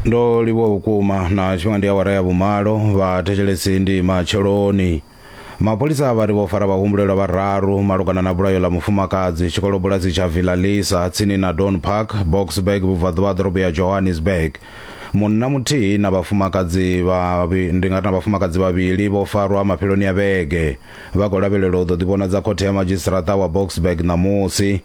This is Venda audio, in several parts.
ndo livhuwa vhukuma na tshifhinga ndi awara ya vhumalo vhathetshelesi ndi matsheloni mapholisa vha ri vho fara vhahumbulelwa vhararu malugana na vhulayo ḽa mufumakadzi tshikolobulasi tsha villalisa tsini na don park boxburg vhubvaḓuvha ḓorobo ya johannesburg munna muthihi na vhafumakadzi vhavhi- ndi nga ri na vhafumakadzi vhavhili vho farwa mafheloni a vhege vha khou lavhelelwa u ḓo ḓivhonadza khothe ya madzhisiṱaraṱa wa boxburg ṋamusi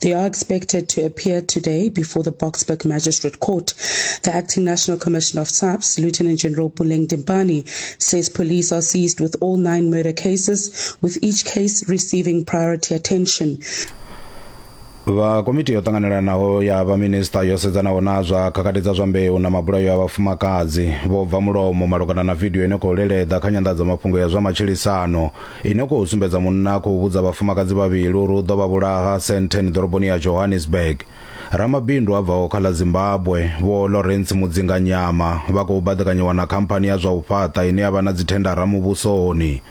They are expected to appear today before the Boksburg Magistrate Court. The acting National Commissioner of SAPS, Lieutenant General Puleng Dimpane, says police are seized with all nine murder cases, with each case receiving priority attention. vha komiti yo ṱanganelanaho ya vhaminista yo sedzanaho na zwa khakhathi dza zwa mbeu na mabulayo a vhafumakadzi vho bva mulomo malugana na vidio ine khou leleḓa kha nyanḓadzamafhungo ya zwa matshilisano Ine u khou sumbedza munna a khou vhudza vhafumakadzi vhavhili uri u ḓo vha vhulaha Sandton ḓoroboni ya Johannesburg. Ramabindu a bvaho kha ḽa Zimbabwe, Vho Lawrence Mudzinganyama, vha khou baḓekanyiwa na khamphani ya zwa u fhaṱa ine ya vha na dzithendara muvhusoni.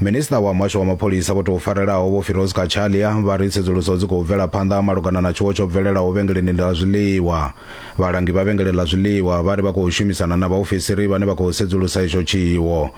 Minisiṱa wa muhasho wa mapholisa vho tou farelaho Vho Firoz Cachalia vha ri tsedzuluso dzi khou bvela phanḓa malugana na tshiwo tsho bvelelaho vhengeleni ḽa zwiḽiwa. Vhalangi vha vhengele ḽa zwiḽiwa vha ri vha khou shumisana na vhaofisiri vhane vha khou sedzulusa itsho tshiwo.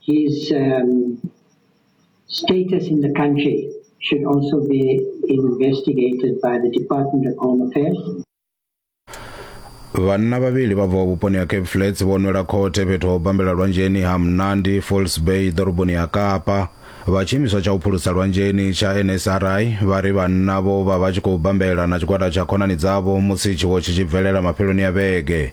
his um, status in the country should also be investigated by the Department of Home Affairs. vhanna vhavhili vha bvaho vhuponi ha cape flats vho nwela khothe fhethu ho bambela lwanzheni ha mnandi falls bay ḓoroboni ya kapa vha tshiimiswa tsha u phulusa lwanzheni tsha nsri vha ri vhanna vho vha vha tshi khou bambela na tshigwada tsha khonani dzavho musi tshiwo tshi tshi bvelela mafheloni a vhege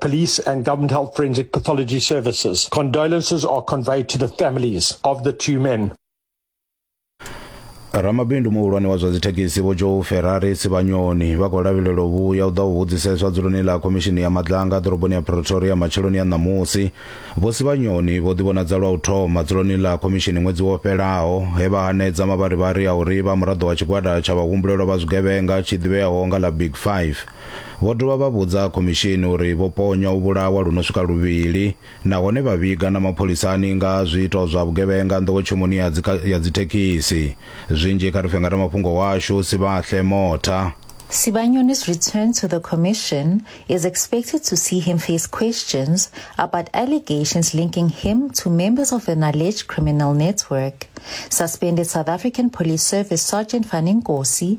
Police and Government Health Forensic Pathology Services. Condolences are conveyed to the families of the two men. ramabindu muhulwane wa zwa dzithekhisi vho joe ferrari sivhanyoni vha khou lavhelela u vhuya u ḓa u vhudziseswa dzuloni ḽa khomishini ya madlanga ḓoroboni ya pretoria matsheloni a ṋamusi vho sivhanyoni vho ḓivhonadza lwa u thoma dzuloni ḽa khomishini ṅwedzi wo fhelaho he vha hanedza mavharivhari a uri vha muraḓo wa tshigwada tsha vhahumbulelwa vha zwigevhenga tshi ḓivheaho nga ḽa big five Vho dovha vha vhudza khomishini uri vho ponywa u vhulawa lu no swika luvhili nahone vha vhiga na mapholisani nga ha zwiito zwa vhugevhenga nḓowetshumoni ya dzi ya dzi thekhisi. Zwinzhi kha ri fhe ngaramafhungo washu Sibahle Motha. Sibanyoni's return to the Commission is expected to see him face questions about allegations linking him to members of an alleged criminal network. Suspended South African Police Service Sergeant Fani Nkosi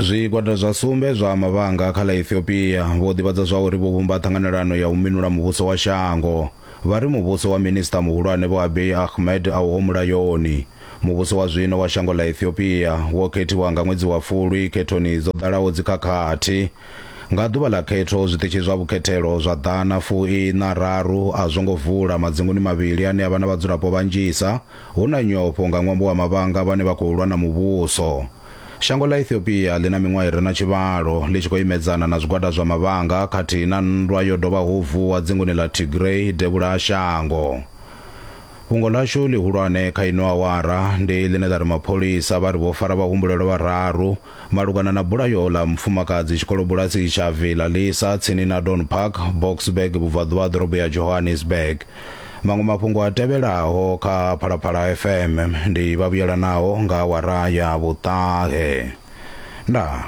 Zwigwada zwa sumbe zwa mavhanga kha ḽa Ethiopia vho ḓivhadza zwa uri vho vhumba ṱhanganelano ya u minula muvhuso wa shango. Vha ri muvhuso wa Minisiṱa Muhulwane Vho Abiy Ahmed a uho mulayoni. Muvhuso wa zwino wa shango ḽa Ethiopia wo khethiwa nga ṅwedzi wa Fulwi khethoni dzo ḓalaho dzikhakhathi. Nga ḓuvha ḽa khetho zwiṱitshi zwa vhukhethelo zwa ḓana fu iṋa raru a zwo ngo vula madzinguni mavhili ane a vha na vhadzulapo vhanzhisa, Hu na nyofho nga ṅwambo wa mavhanga vhane vha khou lwa na muvhuso. Shango ḽa Ethiopia ḽi na miṅwaha i re na tshivhalo ḽi tshi khou imedzana na zwigwada zwa mavhanga khathihi na nndwa yo dovhaho u vuwa dzingoni ḽa Tigray devhula ha shango. Fhungo ḽashu ḽihulwane kha ino awara ndi ḽine ḽa ri mapholisa vha ri vho fara vhahumbulelwa vhararu Malugana na bulayo ḽa mufumakadzi tshikolobulasi tsha Villa Lisa tsini na Don Park, Boksburg vhubvaḓuvha ha ḓorobo ya Johannesburg. Maṅwe mafhungo a tevhelaho kha Phalaphala FM ndi vhavhuyelanaho nga awara ya vhuṱahe. Ndaa.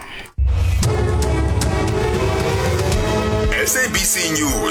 SABC News.